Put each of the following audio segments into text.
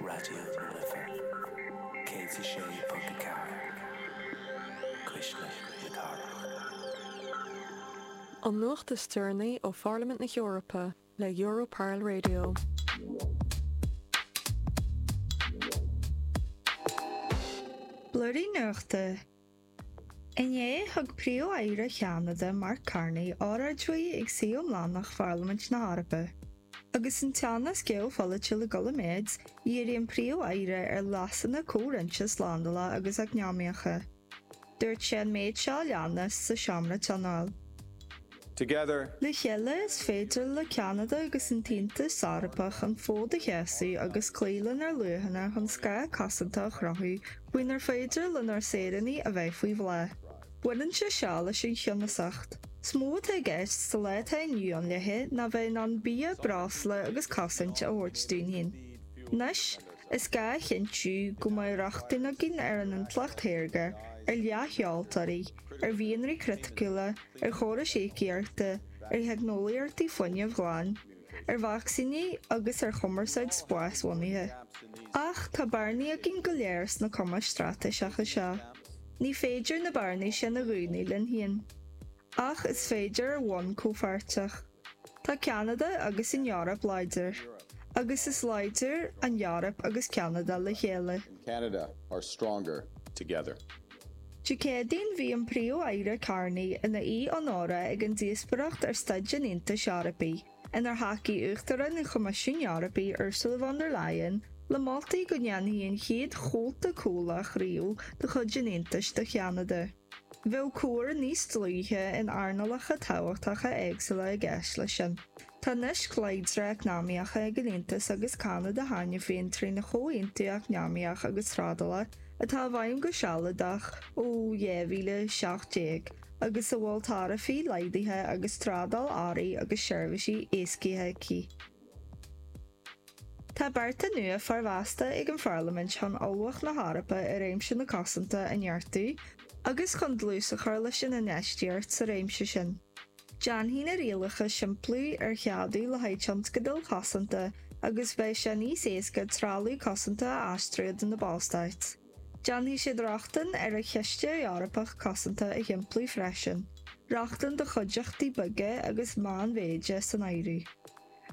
Raidió na Life 106.4, Cuisle na Cathrach. An nuacht is deireanaí ó Pharlaimint na hEorpa le Europarl Radio. Blúirí Nuachta. Inné, thug Príomh-Aire Cheanada, Mark Carney, óráid uaidh ag suí iomlánach Pharlaimint na hEorpa. Agus an teannas geopholaitiúil ag dul i méid, dhírigh an Príomh-Aire ar leasanna comhroinnte slándála agus eacnamaíocha. Dúirt sé an méid seo a leanas sa seomra tionóil. Together. Le chéile, is féidir le Ceanada agus an tAontas Eorpach an fód a sheasamh agus cloí lenár luachanna chun scáth cosanta a chruthú faoinar féidir lenár saoránaigh a bheith faoi bhláth. Baineann sé seo leis an cheannasacht. Is mó atá i gceist sa lá atá inniu ann léithi ná bheith in ann bia, breosla agus cosaint a thabhairt dúinn féin. Anois, is gá a chinntiú go mbeidh rochtain againn ar an intleacht shaorga, ar leathsheoltóirí, ar mhianraí criticiúla, ar chórais íocaíochta, ar theicneolaíochtaí fuinnimh ghlain, ar vacsaíní agus ar chumarsáid spásbhunaithe. Ach tá bearnaí againn go léir sna cumais straitéiseacha seo. Ní féidir na bearnaí sin a dhúnadh linn féin. Ach is féidir ar bhonn comhpháirteach. Tá Ceanada agus an Eoraip láidir, agus is láidre an Eoraip agus Ceanada le chéile. and Canada are stronger together. Dé Céadaoin bhí an Príomh-Aire Carney ina aoi onóra ag an díospóireacht ar Staid an Aontais Eorpaigh, inar thacaigh Uachtarán an Choimisiúin Eorpaigh Ursula von der Leyen le moltaí go ndéanfaí an chéad chomhalta comhlach riamh de chuid an Aontais do Cheanada. Bheadh comhar níos dlúithe in earnálacha tábhachtacha éagsúla i gceist leis sin. Tá naisc láidre eacnamaíocha ag an Aontas agus Ceanada cheana féin trína Chomhaontú Eacnamaíoch agus Trádála atá i bhfeidhm go sealadach ó 2017 agus a bhfuil taraifí laghdaithe agus trádáil earraí agus seirbhísí éascaithe aici. Tá bearta nua formheasta ag an Pharlaimint chun ullmhacht na hEorpa i réimse na cosanta a neartú agus chun dlús a chur leis an infheistíocht sa réimse sin. Déanfaidh na rialacha simpliú ar cheadú le haghaidh tionscadail chosanta agus beidh sé níos éasca trealamh cosanta a aistriú idir na Ballstáit. Déanfaidh siad rochtain ar an Chiste Eorpach Cosanta a shimpliú freisin, rochtain do chuideachtaí beaga agus meánmhéide san áireamh.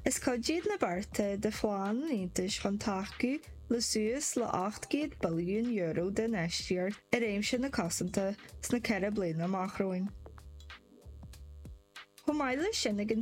Is cuid iad na bearta de phlean an Aontais chun tacú le suas le €800 billiún d'infheistíocht i réimse na cosanta sna ceithre bliana amach romhainn. Chomh maith leis sin, ag an.